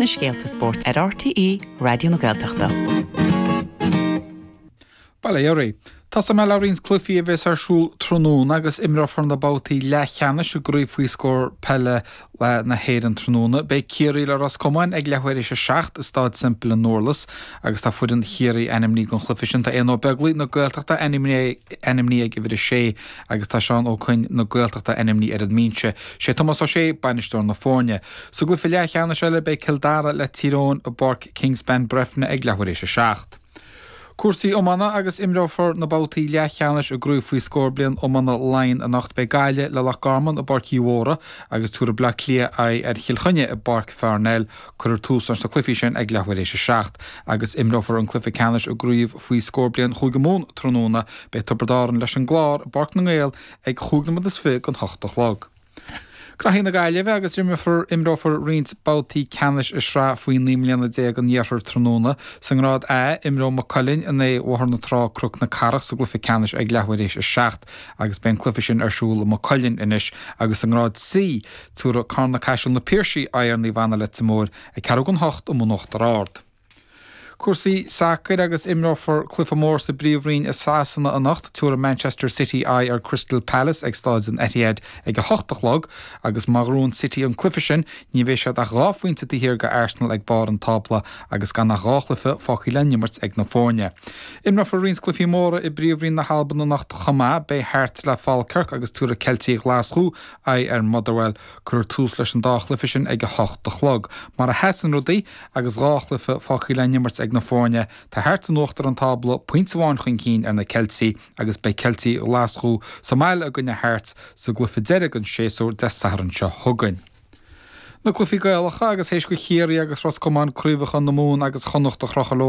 na scéalta spóirt ar RTÉ Raidió na Gaeltachta. sa mbaile. Tosóidh muid le roinnt cluichí a bheas ar siúl tráthnóna agus imreofar na babhtaí leathcheannais i gcraobh faoi scór peile le na hÉireann tráthnóna, beidh Ciarraí le Ros Comáin ag leathuair théis a seacht i Staid Semple i nDurlas agus tá foireann Chiarraí ainmní don chluife sin. Tá Aodhna Ó Beaglaoi na Gaeltachta ainmní ag uimhir a sé agus tá Seán Ó Cuinn na Gaeltachta ainmní ar an mbínse. Sé Tomás Ó Sé bainisteoir na foirne. Sa gcluife leath cheannais eile beidh Cill Dara le Tír Eoghain i bPáirc Kingspan Breifne ag leathuair théis a seacht. Cúrsaí Iomána agus Imreofar na babhtaí leathcheannais i gCraobh Faoi Scór Bliain Iomána Laighean anocht Beidh Gaillimh le Loch Garman i bPáirc Uí Mhórdha agus tabharfaidh Bleá Cliath aghaidh ar Chill Chainnigh i bPáirc Pharnell Cuirfear tús leis na cluichí sin ag leath uair éis a seacht agus imreofar an cluiche ceannais i gCraobh Faoi Scór Bliain Chúige Mumhan tráthnóna Beidh Tiobraid Árann leis an gClár i bPáirc na nGael ag chúig nóiméad is fiche don hocht a chlog. Contae na Gaillimhe agus imreofar roinnt babhtaí ceannais i Sraith Faoi Naoi mBliana Déag an Iarthair tráthnóna. Sa ngrád A, imreoidh Maigh Cuilinn in aghaidh Bhóthar na Trá, Cnoc na Cathrach sa gcluiche ceannais ag leathuair théis a seacht agus beidh an cluiche sin ar siúl i Maigh Cuilinn anois agus sa ngrád C, tabharfaidh Carna-Caiseal na Piarsaigh aghaidh ar Naomh Anna Leitir Móir ag ceathrú chun hocht in Uachtar Ard. Cúrsaí sacair agus imreofar cluiche mór sa bPríomhroinn i Sasana anocht. Tiúrfaidh Manchester City aghaidh ar Crystal Palace ag Staid an Etihad ag a hocht a chlog agus má ghnóthaíonn City an cluiche sin ní bheidh siad ach dhá phointe taobh thiar d'Arsenal ag barr an tábla agus gan ach dhá chluiche fágtha le n-imirt ag na foirne. Imreofar roinnt cluichí móra i bPríomhroinn na hAlban anocht chomh maith. Beidh Hearts le Falkirk agus tiúrfaidh Ceiltigh Ghlaschú aghaidh ar Motherwell. Cuirfear tús leis an dá chluiche sin ag a hocht a chlog. Mar a sheasann rudaí, agus dhá chluiche fágtha le n-imirt ag na foirne, tá Hearts in uachtar an tábla, pointe amháin chun cinn ar na Ceiltigh, agus beidh Ceiltigh Ghlaschú sa mbaile i gcoinne Hearts sa gcluiche deiridh den séasúr Dé Sathairn seo chugainn. Na cluichí Gaelacha, agus théis do Chiarraí agus Ros Comáin craobhacha na Mumhan agus Chonnacht a chrochadh leo